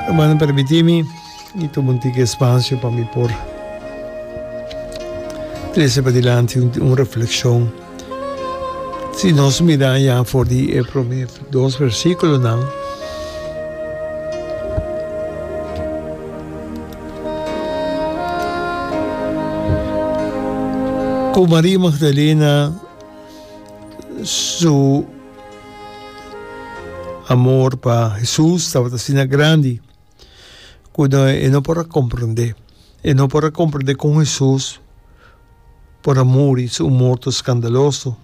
Hermano permitimi y tuma un tique espacio pa mi por trece padilanti un reflexion. Si nos mira ya for di e prome dos versiculonan, cu Maria Magdalena su Amor pa Hesus tabata asina grandi cu e no por a comprende. E no por a comprende con Hesus por a muri su un morto scandaloso.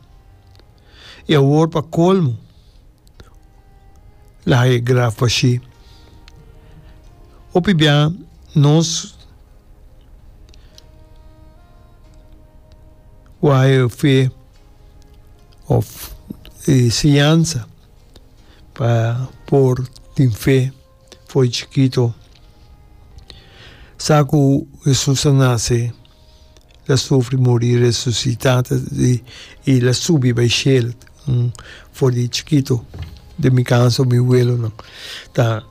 Y awor pa colmo lo haya graaf bashi. Hopi bia nos wou haya fe. òf e siñansa pa por tin fe for di chikito. Sa ku Hesus a nase, el a sufri, muri, resusitá i el a subi bai shel for di chikito, den mi kansa, mi welonan. Ta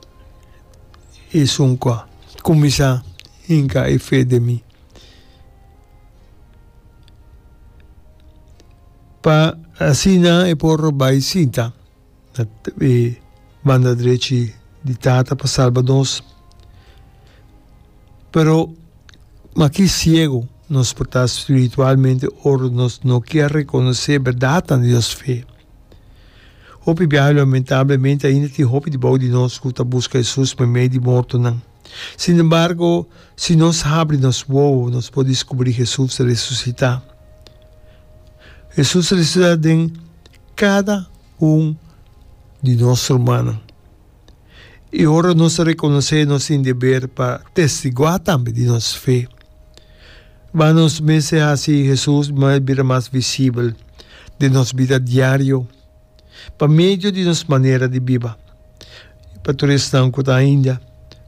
esun ku a kuminsá hinka e fe den mi. Pa asina e por bai sinta na e banda drechi di Tata pa salba nos. Pero maki siegu nos por ta spiritualmente ora nos no ke a rekonosé e bèrdatnan di nos fe. Hopi biaha lamentablemente ainda tin hopi dibou di nos ku ta buska Hesus pa mei di mortonan. Sin embargo, si nos habri nos wowo, nos por descubri Jesús resucitá. Jesús resucitá den cada un di nos rumannan. I ora nos ta reconocé, nos tin deber pa testiguá tambe di nos fe. Bá nos mester haci Jesús bira mas visibel den nos bida diario. pa medio di nos manera di biba. Pa tur esnan ku ta ainda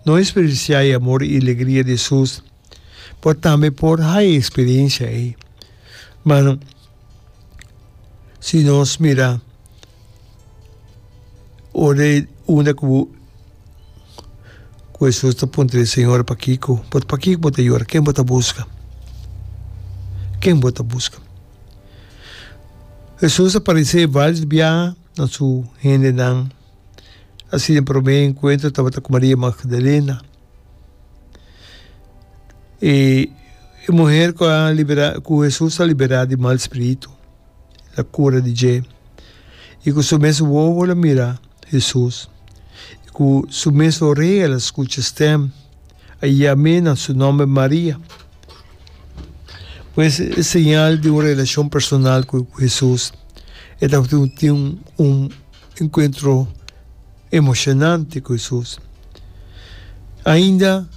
no eksperensiá e amor i legria di Hesus, bo tambe por haña e eksperensia ei. Ma si nos mira ora e unda ku bo ku Hesus ta puntra di Señor, pakiko bo ta yora? Ken bo ta buska? Ken bo ta buska? Hesus a paresé váris biaha na su hendenan. Asina e promé enkuentro tabata ku Maria Magdalena. E muher ku a liberá ku Hesus a liberá di mal spiritu, el a kura di dje i ku su mes wowo el a mira Hesus i ku su mes oré el a skucha stèm. A yam'é nan su nòmber Maria. Pues e señal di un relashon personal ku Hesus. E ta tin un enkuentro emoshonante ku Hesus. Ainda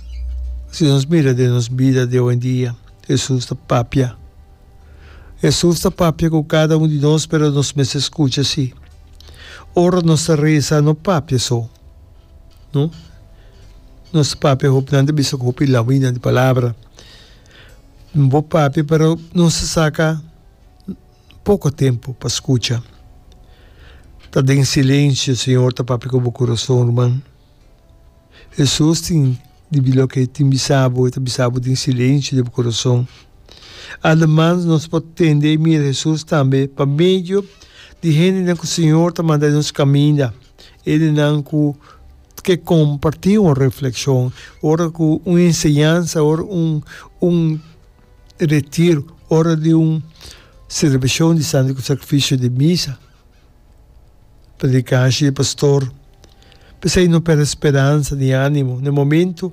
si nos mira den nos bida di owendia, Hesus ta papia. Hesus ta papia ku kada un di nos, pero nos mester skucha si. Ora nos ta resa no papia so. No. Nos papia hopnan ta bisa cu hopi lahuina di palabra. N bo papia pero nos a saca poco tempo pa scucha. Ta den silencio Señor ta papia cu bo corazon, ruman. Hesus tin dibi loke e tin bisa bo, e ta bisa bo den silencio di bo corazon. Ademas nos por tende y mira Hesus tambe pa medio di hendenan cu Señor ta manda nos caminda. E di nan ku ke kompartí un reflekshon, ora ku un enseñansa, ora un un retiro, ora di un selebrashon di Santo Sakrifisio di misa, predikasha di pastor. P'esei no pèrdè speransa ni ánimo. Na e momentu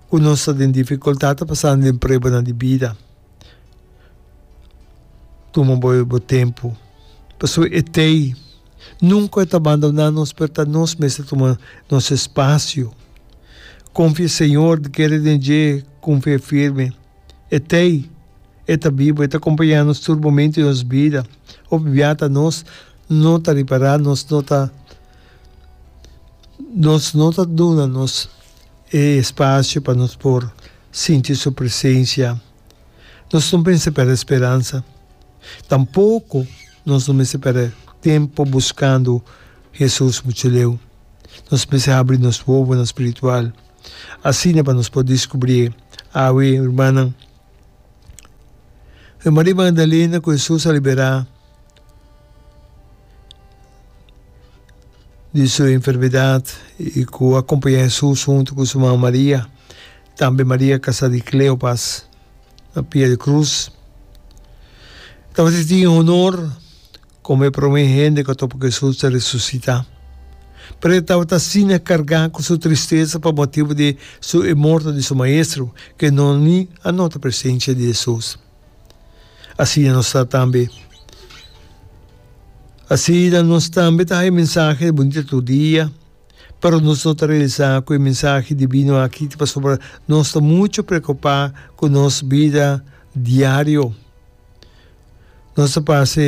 ku nos ta den difikultat ta pasando den pruebanan di bida. Tuma bo e bo tempu pasobra e tei nunka ta bandoná nos pero ta nos mes ta tuma nos espasio. Konfia e Señor di kere den dje ku un fe firme. E tei e ta biba, e ta kompañá nos tur momentu di nos bida. Hopi bia ta nos no ta ripará, nos no ta nos no ta duna nos. e espacio pa nos por sinti su presencia, nos no mester perde speransa, tampoco nos no mester perde tempo buscando Hesus mucho leu. Nos mester habri nos wowonan spiritual, asina pa nos por descubrié. Awe, rumannan, Maria Magdalena cu Hesus a liberá di su enfermedad y cu a acompaña Jesús hunto cu su mama María. Tambe María casa di Cleopas na pia di cruz. Tabata tin honor como e prome hende cu a topa cu Jesús ta resucita. Pero e tabata asina carga cu su tristeza pa motibo di su e morto di su maestro, cu e nonnan ni a nota presencia di Jesús. Asina nos ta tambe. Asina nos tambe ta haña e mensahe bunito tur dia, pero nos no ta realisa ku e mensahe divino aki ta pasobra nos ta muchu preokupá ku nos bida diario. Nos ta pasa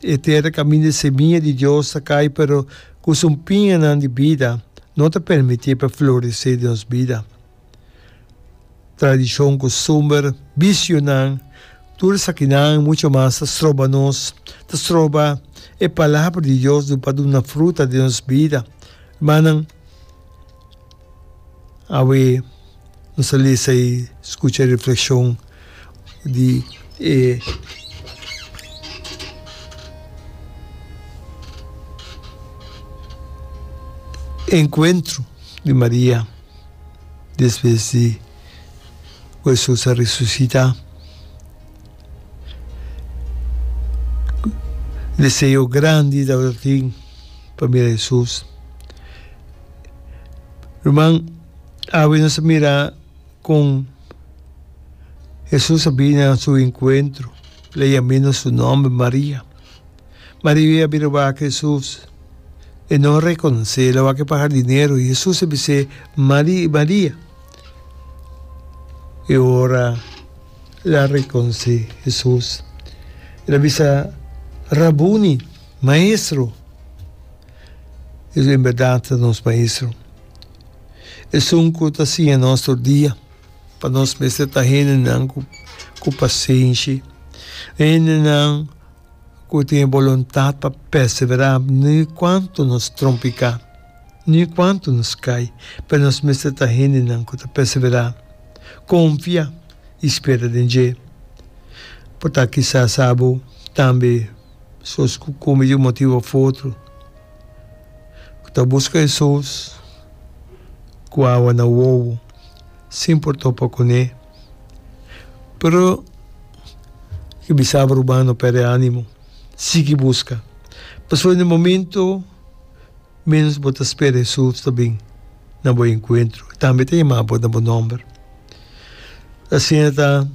e tera kaminda e semia di Dios ta kai, pero ku sumpinganan di bida no ta permití pa floresé den nos bida. tradishon, kustumber, bisionan, tur esakinan i mucho mas ta stroba nos, ta stroba e Palabra di Dios lo pa duna fruta den nos bida. Rumannan, awe nos a lesa i skucha e reflekshon di e enkuentro di Maria. despues di ku Hesus a resusitá. Deseo grandi tabata tin pa mira Hesus. Ruman, awe nos a mira kon Hesus a bini na su enkuentro, lei a mina su nòmber, Maria. Maria a bira wak Hesus, e no a rekonosé, el a wak e pa hardinero, i Hesus a bis'é, Mari i Maria! E ora el a rekonosé Hesus, el a bisa, Rabuni, Maestro! Hesus en bèrdat ta nos Maestro. Esun ku ta siña nos tur dia, pa nos mester ta hendenan ku pasenshi, hendenan. ku tin e boluntat pa perseverá ni kuantu nos trompiká, ni kuantu nos kai, pero nos mester ta hendenan ku ta perseverá, konfia i spera den dje. Por ta kisas abo tambe sos ku komo yu motibu of otro ku ta buska esos ku awa na wowo sin por topa kuné. Pero e bisaba Ruben no perde animo, sigui buska, pasobra den e momento menos bo ta spera Hesus ta bin na bo enkuentro, tambe ta yama bo na bo nomber. Asina ta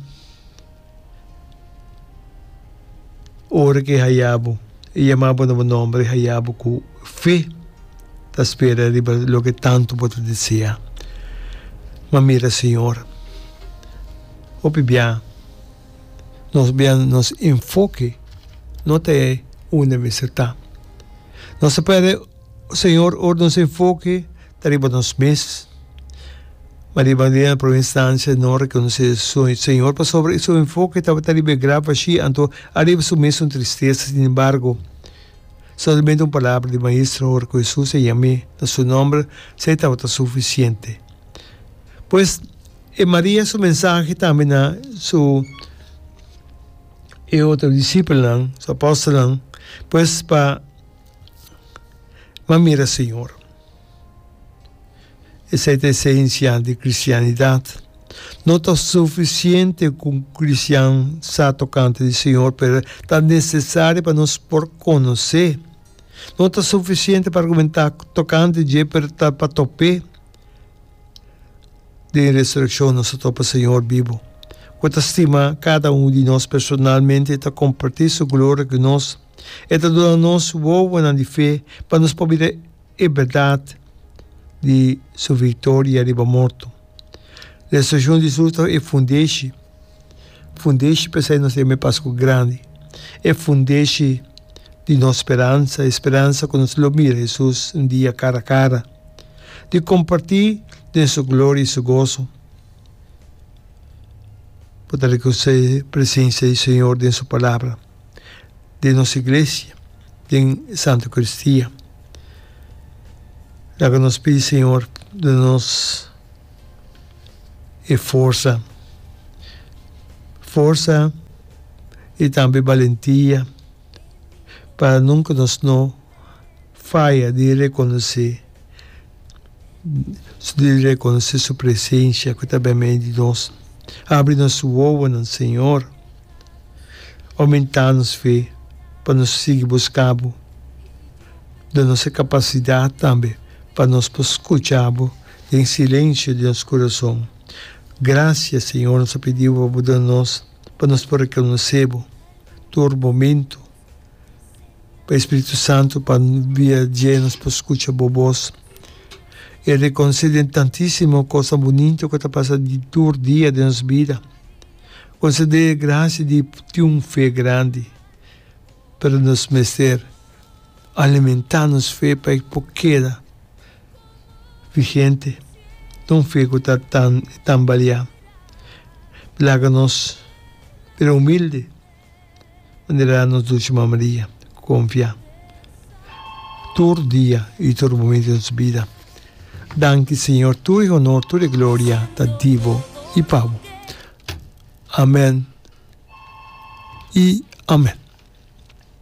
ora ke e haya bo, e yama bo na bo nomber, e haya bo ku fe. ta spera riba loke tantu bo ta desea. Ma mira, Señor, hopi bia nos bia nos enfoke no ta e unda mester ta. Nos ta para, Señor, ora nos enfoke ta riba nos mes, ma riba dia na prome instancia no rekonosé su Señor pasobra su enfoke tabata riba e graf ashi, anto ariba su mes un tristesa. Sin embargo. Solamente un palabra di Maestro ora cu Jesus a yam'e na su nomber sa e tabata suficiente. Pues e Maria su mensahe tambe na su e otro disipelnan, su apostelnan, pues pa Mami mira Señor. Esei ta esensia di kristianidat. No ta sufisiente ku un kristian sa tokante di Señor, pero ta nesesario pa nos por konos'é. No ta sufisiente pa argumentá tokante dje, pero ta pa top'é. Den resurekshon nos ta topa Señor bibu, ku ta stima kada un di nos personalmente i ta kompartí Su gloria ku nos. E ta duna nos wowonan di fe pa nos por bira e bèrdat di su viktoria riba morto. Resurekshon di Jesús ta e fundeshi, fundeshi pa esei nos ta yama e Paskua Grandi, e fundeshi di nos speransa, e speransa ku nos lo mira Jesús un dia kara kara, di kompartí den su gloria i su goso, por ta rekonosé presensia di Señor den su Palabra. den nos iglesia, den Santa Eucaristia. Laga nos pidi Señor duna nos e forsa, forsa y tambe balentia pa nunca nos no faya di reconoce di reconoce su presencia cu ta bimen di nos. Abri nos wowonan Señor. Omentá nos fe pa nos sigui buscá bo. Da nos e capacidad tambe pa nos por scucha bo den silencio di nos corazon. Gracia, Señor, nos a pidi bo pa bo duna nos pa nos por reconoce bo tur momento. pa e Spiritu Santu pa bia dje nos por skucha bo bos. E rekonosé den tantísimo kos bunito ku ta pasa tur dia den nos bida. Konsedé e grasia di tin un fe grandi, pero nos mester alimentá nos fe pa e por keda vigente, no un fe ku ta tan tambaleá. Laga nos bira humilde. manera a nos Dulce Mama Maria confia tur dia y tur momento di nos bida. Danki Señor, tur e honor, tur e gloria ta di Bo y pa Bo. Amen y amen.